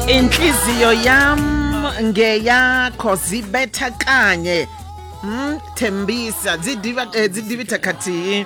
inhliziyo yam ngeyakho zibetha kanye mm, thembisa dzi diva- eh, dzi divitha khathihi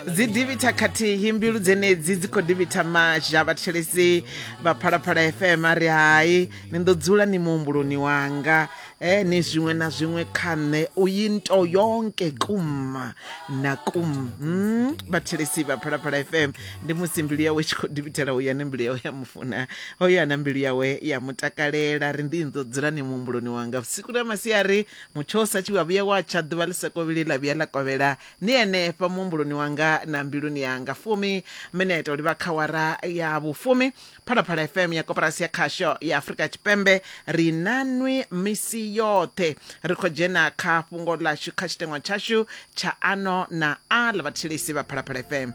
dzi divitha khathihi mbilu dzenedzi dzi khou divitha mazha vhathetshelesi vha phalaphala fm a ri hai ni ḓo dzula ni muhumbuloni wanga Eh nezimwe nazimwe khanne uyinto yonke kuma nakum mm, bathelesi baphalaphala fm ndi musi mbilu yawe tshi khou ḓivhitela uya ne mbilu yawe ya mufuna hoyo ana mbilu yawe ya mutakalela ri ndi ndo dzula ni muhumbuloni wanga vhusiku na masiari mutsho sa tshi wa vhuya wa tsha ḓuvha ḽi sokovhili ḽa vhuya ḽa kovhela ni henefha muhumbuloni wanga na mbiluni yanga fumi mene ita uri vha khawara ya vhufumi phalaphala fm ya koporasi ya khasho ya afurika tshipembe ri na nwi misi yoṱhe ri khou dzhena kha fhungo ḽashu kha tshiteṅwa tshashu tsha ano na a ḽa vhathetshelesi vha phalaphala fm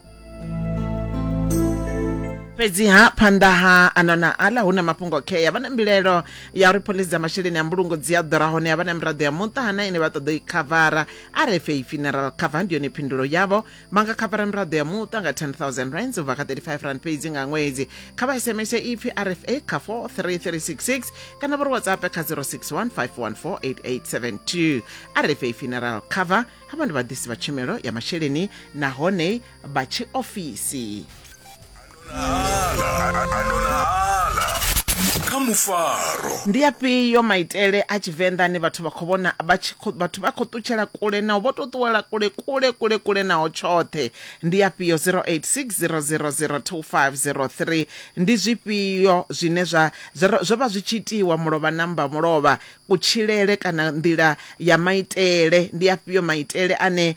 fhedziha phanḓa ha ano na aḽa hu na mafhungo khea vha na mbilelo ya uri phoḽisi dza masheleni a mbulungo dzi a ḓura hone a vha na miraḓo ya muṱa hana ine vha ṱoḓa u i khavara rfa funeral cover ndi yone phindulo yavho vha nga khavara miraḓo ya muṱa nga 10000 rands u bva kha 35 rand fhedzi nga ṅwedzi kha vha sms ipfi rfa kha 43366 kana vha ri whatsapp kha 0615148872 rfa funeral cover havha ndi vhaḓisi vha tshumelo ya masheleni nahone vha tshiofisi kha mufaro Ndi afhio maitele a Tshivenḓa ane vhathu vha khou vhona vha tshi khou vhathu vha khou ṱutshela kule nao vho tou ṱuwela kule kule kule kule nao tshoṱhe ndi afhio 0860002503 ndi zwifhio zwine zwa zwo zwo vha zwi tshi itiwa mulovha na mmba mulovha kutshilele kana nḓila ya maitele ndi afhio maitele ane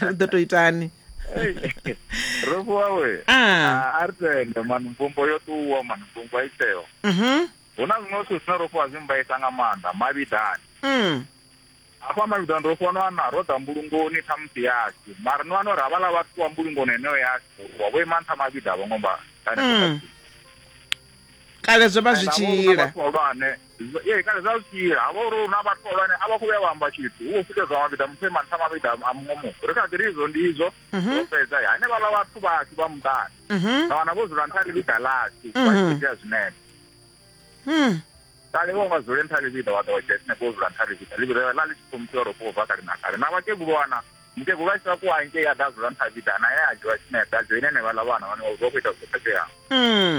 ri ḓo to itani ro vhuawe a ri tende mani mvumbo yo ṱuwa mani mvumbo a i tsheo hu na zwiṅwe zwithu zwine ro fhiwa zwi mbaisa nga maanḓa mavhidani hafha mavhidani ro fhiwa no ana ro ḓa mbulungoni ṱhamusi yashu mara no ano ri havhala vhathu wa mbulungoni heneyo yashu wa vho ima nṱha mavhida a vho ngo mba kale zwo vha zwi tshi ila Ee, kana zwa sia ha vha uri hu na vhathu vhahulwane a vha khou vhuya vha amba tshithu hu khou fhutedzwa mavhiḓa muthu e manṱha mavhiḓa a muṅwe muthu ri kha ḓi ri izwo ndi izwo mhm. ro fhedza hanevhaḽa vhathu vhashu vha muṱani na mhm. wana vho dzula nṱha ḽivhiḓa ḽashu vha tshi mhm. itea zwinepe hmm. kale vho nga dzule nṱha ḽivhiḓa wa ḓo wa dzhia sinepe wo dzula nṱha ḽivhiḓa ḽivhiḓa ḽa ḽi tshi khou muthiwa ro khou bva kale na kale na vhakegulu wana mukegulu a tshi vha kuwa ngei a ḓa dzula nṱha ḽivhiḓa na ye a dzhiwa sinepe a dzhoine henevhaḽa vhana vhane vha khou ita zwo khetheaho hmm.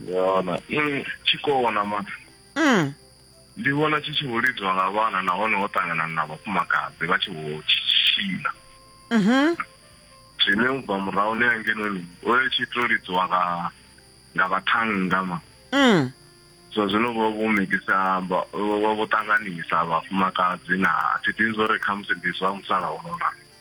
ndi vhona i tshi kona ma mm. ndi vhona tshi tshi vho lidzwa nga vhana nahone ho ṱangana na vhafumakadzi vha tshi vho tshitshina mm -hmm. zwine u bva murahu ni angenoni o yo tshi to lidzwa nga nga vhathannga ma mm. so zwino vho vho mikisa vho vho ṱanganisa vhafumakadzi na thi ḓivhi zwo ri khamusi ndi zwa musalauno na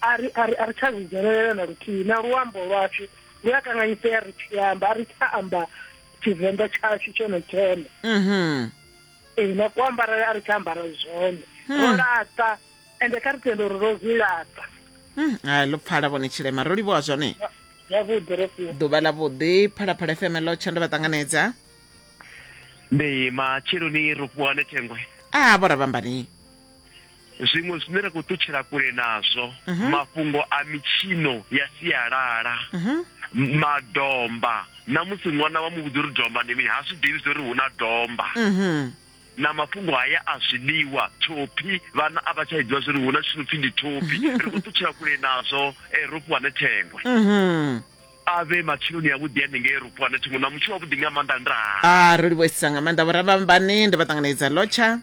a ri a ri a ri tsha zwi dzhenelela na luthihi na luambo lwashu lu a kanganyisea ri tshi amba a ri tsha amba tshivenḓa tshashu tshone tshone mhm. ee na kuambarele a ri tsha ambara zwone hmm. ro laṱa ende kha ri tende uri ro zwi laṱa hmm, hai ḽo pfala vhone tshilema ro livhuwa zwone yavhuḓi ro fhiwa ḓuvha ḽa vhuḓi phalaphala fm ḽo tsha ndo vha ṱanganedza ndi matsheloni ro fhiwa ne thengwe a vho ra vhambani Zwiṅwe zwine ra khou ṱutshela kule nazwo mhm. mafhungo a mitshino ya sialala mhm. madomba na musi ṅwana wa muvhudza uri domba ndi mini ha zwi ḓivhi zwa uri hu na domba mhm. na mafhungo haya a zwiḽiwa thophi vhana a vha tsha iḓivha zwa uri hu na tshino pfhi ndi thophi ri khou ṱutshela kule nazwo eh, ro fhiwa ne thengwe a vhe matsheloni avhuḓi hanengei ro fhiwa ne thengwe na mutshi wavhuḓi nga maanḓa ndaa ah, ro livhuesisa nga maanḓa vhorabambani ndi vha ṱanganedza lotsha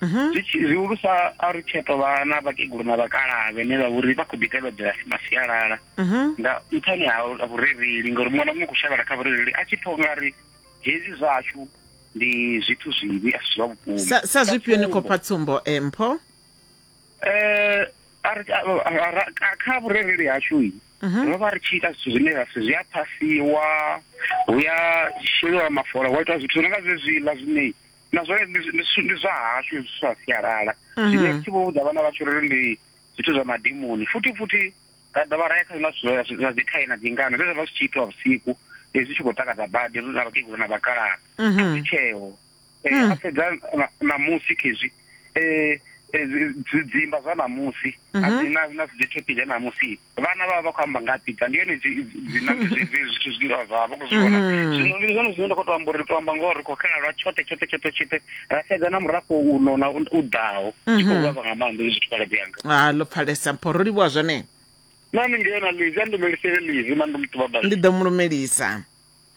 mhm. zwihulusa a ri tsheto vha na vhakegulu na vhakalaha vhene vha vhori vha khou ḓi tevhedzela masialala mhm. nga nṱhani ha vhurereli ngauri muṅwe na muṅwe khou shavhela kha vhurereli a tshi pfha nga ri hezwi zwashu ndi zwithu zwivhi a si zwa vhukuma sa zwifhio ni khou pha tsumbo eh, mpho um kha vhurereli hashu mhm. ro vha ri tshi ita zwithu zwine ra si zwi a phasiwa hu ya sheliwa mafola wa ita zwithu zwi no nga zwezwiḽa zwine na zwone ndi zwa hashu zwi sa sialala mhm. zwine thi vho vhudza vhana vhashu ri ndi zwithu zwa madimoni futhi futhi ra dovha ra ya kha zwiṅwe zwithu zwa dzikhae na dzingano zwe zwa vha zwi tshi itiwa vhusiku zwi tshi khou takadza badi ri na vhakegulu na vhakalaha mhm. zwi tsheo eh, mhm. a sedza namusi khezwi um eh, eh, dzidzimba zwa namusi a dzi na na dzi thopile namusi vhana vha vha vha khou amba nga pizza ndi yone dzinambizizi zwithu zwine vha vha khou zwi vhona mm. zwino ndi zwone zwine nda khou to amba uri ri to amba ngoho ri khou xela lwa tshoṱhe tshoṱhe tshoṱhe tshoṱhe ra sedza na murafho uno na u ḓaho tshi khou vhavha nga maanḓa hezwi zwithu khaladzi yanga a ah, ḽo pfalesa mpho ro livhuwa zwone nami ndi yona lizi a ndi mumelise lizi ma ndi muṱuba ndi ḓo mu lumelisa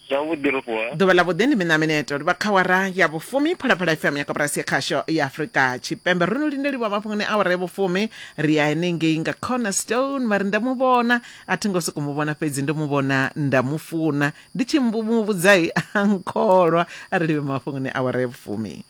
zwavhuḓi ro vuwa ḓuvha ḽa vhuḓi ndi mina mineto ri vha kha wara ya vhufumi phalaphala fm ya koporasi ya khasho ya afurika tshipembe ro no lindeliwa mafhungoni awara ya vhufumi ri ya henengei nga cornerstone vha ri nda mu vhona a thi ngo soko mu vhona fhedzi ndo mu vhona nda mu funa ndi tshi muvhudzai a nkholwa a ri livhe mafhungoni awara ya vhufumi